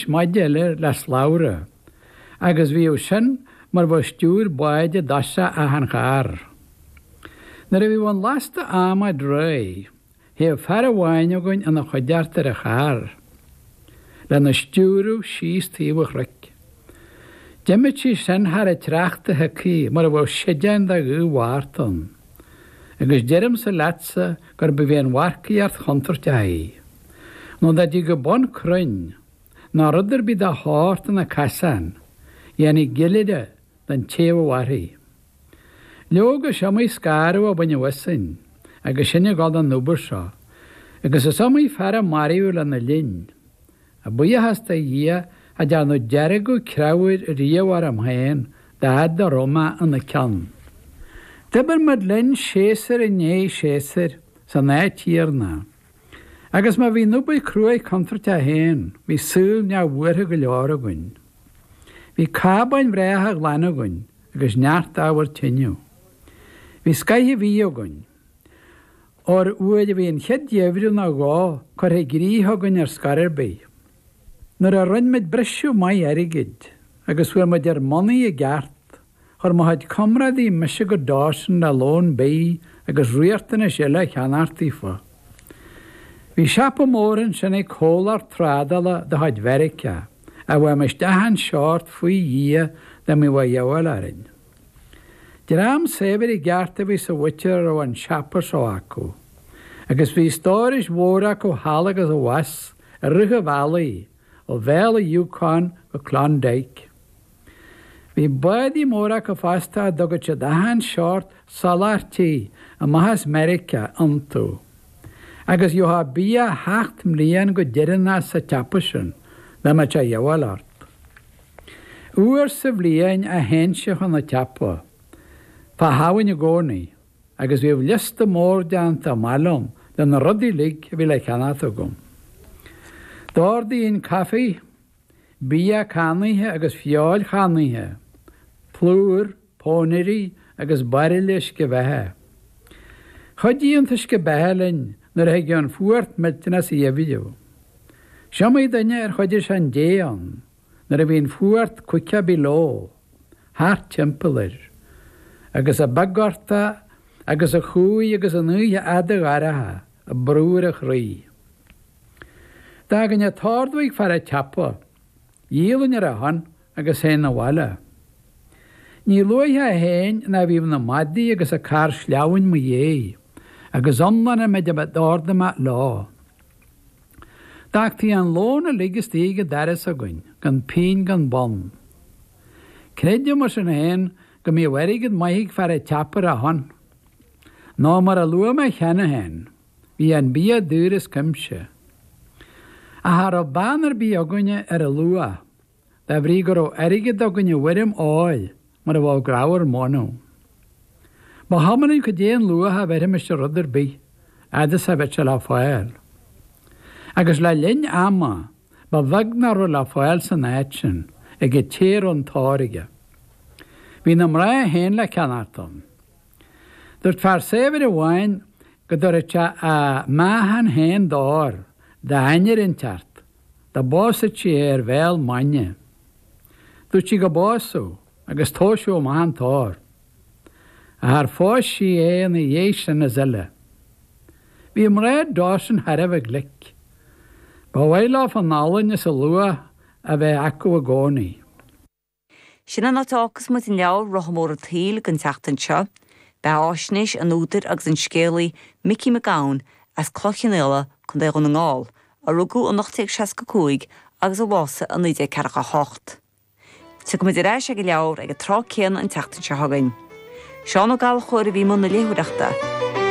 Maide leis le slabhra, agus bhíodh sin mar bheadh stiúir báid i dtosach achan charr. Nuair a bhíodh an lasta adhmaid réidh, théadh fear amháin againn ina chuideachta ar an charr, lena stiúradh síos taobh an chnoic. D'imíodh sí sin thar an tsneachta shiocaithe mar a bheadh séideán de ghaoth Mhárta ann. Agus deirimse leatsa gurb í an mharcaíocht chontúirteach í. nó dá dtigeadh bun crainn ná rud ar bith dá shórt ina casán, dhéanfaí gillire den té a bheadh uirthi. Leoga, is iomaí scanradh a baineadh asainn agus sinn ag gabháil don obair seo, agus is iomaí fear a maraíodh lena linn. Ach buíochas do Dhia, cha dtearnadh deargadh creabhair riamh orm féin dá fhad a raibh mé ina ceann. D'oibir muid linn séasúr i ndiaidh séasúir san áit chéanna. Agus má bhí an obair cruaidh contúirteach féin, bhí saol neamhbhuartha go leor againn. Bhí cábáin bhreátha ghlana againn agus neart ábhar tineadh. Bhí scoith an bhídh againn. Ón uair a bhí an chéad gheimhreadh nó dhó curtha i gcrích againn ar scor ar bith, nuair a rinne muid briseadh maith airgid agus fuair muid ar ár mbonnaí i gceart, Chuir mo chuid comrádaí mise go Dawson le lón bidh agus riachtanais eile a cheannacht daofa. Bhí siopa mór ansin ag comhlacht trádála de chuid Mheiriceá a bhfuighimis achan seort faoi Dhia dá mbíodh a dhíobháil orainn. Dream saibhir i gceart a bhí sa mhuintir a raibh an siopa seo acu, agus bhí stórais mhóra acu thall agus abhus i rith an bhealaigh ó Bhéal an Yukon go Klondike. Bhí bádaí móra acu fosta a dtugadh siad achan seort soláthairtí amach as Meiriceá iontu. Agus gheofá bia sheacht mbliain go deireanach sa tsiopa sin, dá mbeadh sé a dhíobháil ort. Uair sa bhliain a théinnse chun an tsiopa, fá Shamhain i gcónaí, agus bhíodh liosta mór déanta amach liom de na rudaí uilig a bhí le ceannacht agam. D'ordaínn caife. bia cannaithe agus feoil channaithe, plúr, pónairí agus bairille uisce beatha. Chuidigh an t-uisce beatha linn nuair a thigeadh an fuacht millteanach sa gheimhreadh. Is iomaí duine ar choinnigh sé an dé ann nuair a bhí an fuacht caoga below thart timpeall air, agus an beaguchtach agus an cumhaidh agus an oíche fhada dhorcha ag brú ar a chroí. D'fhágainn an t-ordú ag fear an tsiopa. Dhíolainn ar a shon agus théinn abhaile. Ní luaithe a théinn ná bhíodh na madaidh agus an carr sleamhnáin 'mo dhéidh, agus iomlán an méid a d'ordaigh mé leo. D'fhágtaí an lón uilig istigh ag an doras againn, gan pínn gan bonn. Creidim, mar sin féin, go mbíodh airgead maith ag fear an tsiopa ar a shon. Nó, mar a luaigh mé cheana féin, Bhí an bia daor as cuimse. Ach cha raibh beann ar bith againne ar a luach, de bhrí go raibh airgead againn i bhfoirm óir mar a bheadh grabhar mónadh. Ba chuma linn cad é an luach a bheirimis ar rud ar bith, fhad is a bheadh sé le fáil. Agus le linn ama, ba bheag nach raibh le fáil san áit sin, ag an té a raibh an t-ór aige. Bhí na mná féin le ceannacht ann. Duirt fear saibhir amháin go dtabharfadh sé a mheáchan féin d'ór d'ainnir inteacht dá bpósfadh sí é ar bhéal maidine. Dúirt sí go bpósfadh agus tomhaiseadh amach an t-ór. Ach char phós sí é ina dhiaidh sin is uile? Bhí mná Dawson thar a bheith glic. Ba mhaith leofa an olann is a luach a bheith acu i gcónaí. Sin an áit a fhágfas muid an leabhar, Rotha Mór an tSaoil, don tseachtain seo. Beatháisnéis an údair agus an scéalaí Micí Mac Gabhann as Cloich Chionnaola, Co. Dhún na nGall, a rugadh in 1865 agus a bhásaigh in 1948. Tiocfaidh muid ar ais ag an leabhar ag an tráth céanna an tseachtain seo chugainn. Seán Ó Gallchóir a bhí i mbun na léitheoireachta.